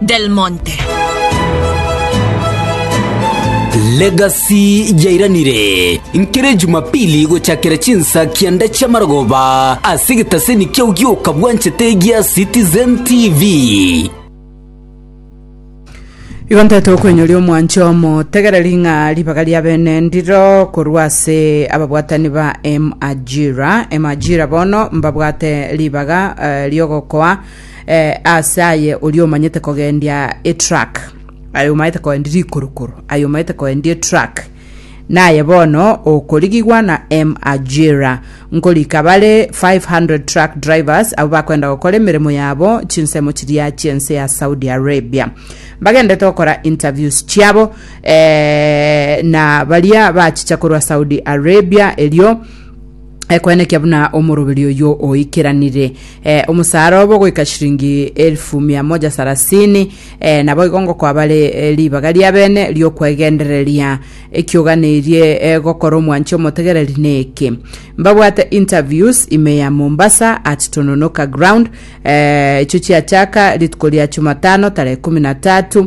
Del Monte. Legacy yairanire nkere Jumapili gochakera chinsa kianda chi'amarogoba ase egetaseni kiao gioka bwanchete gia Citizen TV. Igo ntete okwenyoria omwanche omo tegereri ng'a ribaga ria bene ndiro korwa ase ababwatani ba Emajira Emajira bono mbabwate ribaga eh, riogokoa Eh, ase aye oria omanyete kogendia etruck aye omanyete kogendia rikorokoro aye omanyete kogendia etruck naye bono okorigigwa na m ajira nkorika bare 500 truck drivers abo bakwenda gokora emeremo yabo chinsemo chiria chiense ya saudi arabia bagendete gokora interviews chiabo eh, na baria bachicha korwa saudi arabia erio ekwenekia buna omoroberi oyio oikeranire eh, omosaara obo goika shiringi elfu mia moja sarasini eh, nabo igo ngokwabare eh, ribaga ria bene riokwegendereria ekioganeirie eh, gokora omwanchi omotegereri neke mbabwate interviews ime ya mombasa at tononoka ground eh, icho chiachaka rituko ria chumatano tarehe kumi na tatu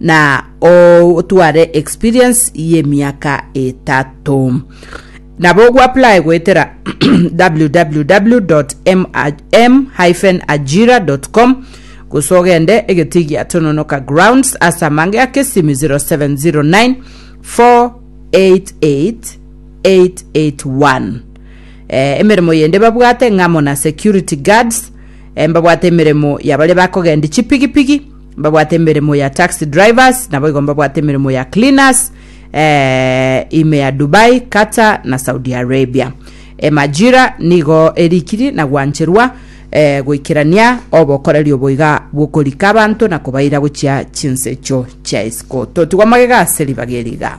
na otware experience y'emiaka etato nabo ogwapply goetera www.m-ajira.com gose ogende egeti gia tononoka grounds ase amange ya kesimi 0709 488 881 eh, emeremo yende babwate ng'amo na security guards eh, mbabwate emeremo ya baria bakogendi chipigipigi Mbabwate emeremo ya taxi drivers, naboigo mbabwate emeremo ya cleaners eh, ime ya Dubai, Qatar na Saudi Arabia. Emajira nigo erikiri na gwancherwa eh, goikerania obokorerio boiga bw'okorika abanto na kobaira gochia chinsecho chia isiko. Totigwa magega ase ribaga eriga.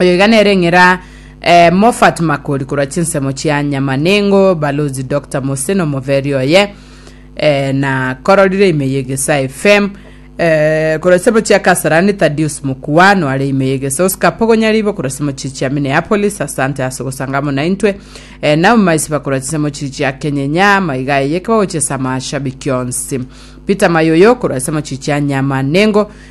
Oyo iga nere ng'era eh, Moffat Makori korwa chinsemo chia Nyamanengo, Balozi Dr. Mose na omoberi oye eh, na kororire ime yegesa FM eh, korwa chinsemo chia Kasarani Thaddeus Mukuano are ime yegesa Oscar Pogonyaribo korwa chinsemo chiri chia Minneapolis asante ase gosanga amo naintwe eh, Naomi Maisiba korwa chinsemo chiri chia Kenyenya maiga eye kebagochia ase amashabiki onsi Peter Mayoyo korwa chinsemo chiri chia Nyamanengo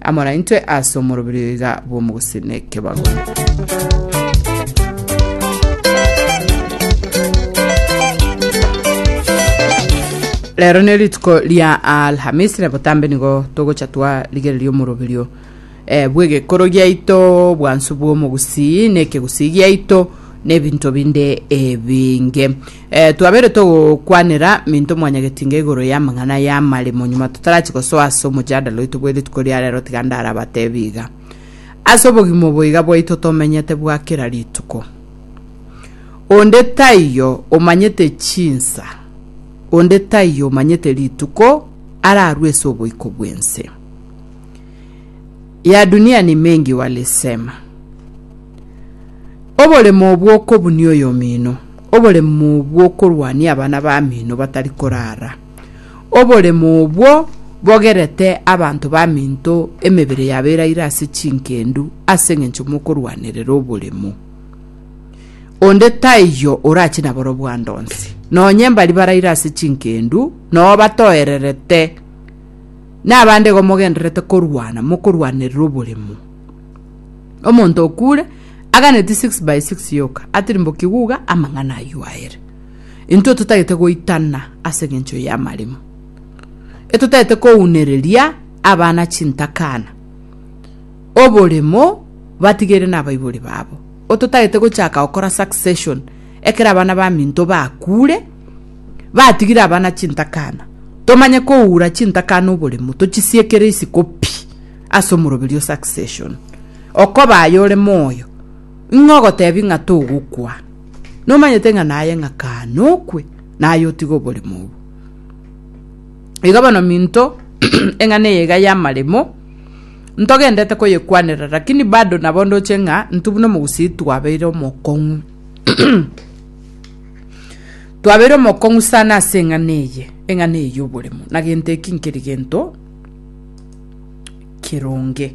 Amara intwe ase omoroberio iga bw'omogusii nekebago. Rero ne rituko ria Alhamisi na botambe nigo togocha twarigereria omoroberio eh, bw'egekoro giaito bwansu bw'omogusii nekegusii giaito n'ebinto binde ebinge Eh, twabeire togokwanera minto mwanyagetinga igoro y'amang'ana y'amaremo nyuma totarachie gosoa ase omojadala oito bw'erituko ria rero tiga ndarabatebi iga. Ase obogima obo iga bwaito tomenyete bwa kera rituko. Onde taiyo omanyete chinsa, onde taiyo omanyete rituko ararue ase oboiko bw'ense. Ya dunia ni mengi walisema. Oboremo obwo okobunia oyomino. Oboremo bw'okorwania abana b'aminto batari korara. Oboremo obwo bogerete abanto b'aminto emebere yabo eraire ase chingendu ase engencho mokorwanerera oboremo. Onde taiyo orache naborobwo ande onsi. Nonye mbari baraire ase chingendu noo batoererete, nabande igo mogendererete korwana mokorwanerera oboremo. Omonto okuure aganeti 6 by 6 yoka atirimbokigwe uga amang'ana ayio aere. Intwe totagete goitana ase engencho y'amarimo. Etotagete kounereria abana chintakana, oboremo batigeire nabaibori babo. Ototagete gochaka gokora succession ekero abana baminto bakuure, batigire abana chintakana. Tomanye koura chintakana oboremo, tochisiekere isiko pi. Ase omoroberi o succession okoba aye ore moyo ing'o ogotebi ng'a togokwa? Nomanyete ng'a naye ng'a kaane okwe naye otige oboremo obo. Iga bono minto eng'ana eye iga y'amaremo ntogendete koyekwanera lakini bado nabo ndoche ng'a intwe buna omogusii twabeire omokong'u. Twabeire omokong'u sana ase eng'ana eye, eng'ana eye y'oboremu, na gento eki nkeri gento keronge.